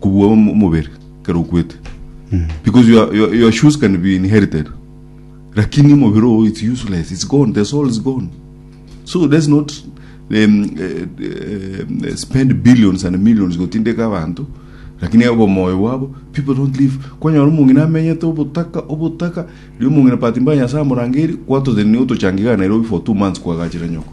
kobua omobere kero okwete because you are, you are, your shoes can be inherited lakini omobere oo it's useless it's gone the soul is gone so let's not um, uh, uh, spend billions and millions gotindeka abantu lakini abo moyo bwabo people don't live kwanyora omong'ina amenyete obotaka obotaka ri omong'ina pati mbaya nyasaye amorangeri kwatoteni otochangiga nairobi for two months kwagachire nyoko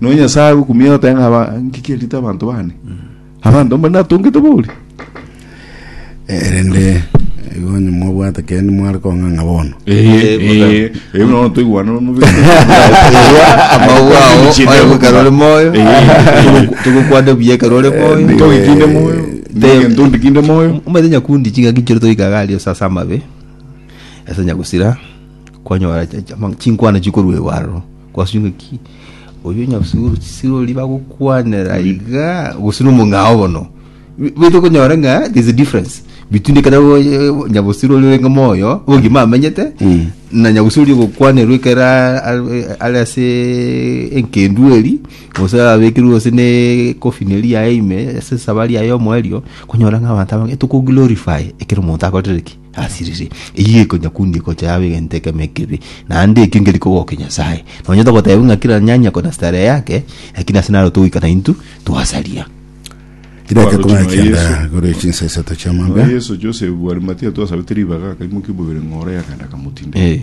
Nonya Nyasae agokumia agoteba ng'a aba- ngiki erita abanto bane, abanto mbane natongete bori. Erende igo onye mwabwate kende mware kong'ang'a bono. Nono toigwane Amagwa ao oye gokara ore moyo togokwana buya ekero ore moyo togikinde moyo egento ndikinde moyo omanyete nyakundi chingaki nchire toikaga aria ase ase amabe ase nyagusira kwanyora ch- ch- ama- chinkwana chikoruegwa aroro kwasio ng'aki Oyio nyasuru sirori bagokwanera iga gose no mong'ao bono. Bito konyora nga there's a difference between ekero eh, nyabosiri ori orenge moyo ogima amenyete Mm. na nyabosiri ori gokwanerwa ekero a- a- are ase enkendu eri gose abekirwe gose ne coffin eri yaye ime ase esabari yaye omoerio konyora ng'a abanto abange tokoglorify ekero omonto akorire ki Asiriri, eyio ekonyakundia egocha yabo egento ekemo ekebi, naende ekio nkeri kogokia Nyasae. Nonyete gotebiwa ng'a kera nyanya kona starehe yake, lakini ase naro togoika naintwe twasaria. Ribaga Omobaruti ekong'ana noa ekianda Yeso. igoro ye chinsa isato Noa chi'amambia. Yeso, Josefu bw'Arimatia twasabete ribaga, akaimokia omobere ng'oro y'akaenda akamotinda. Eh.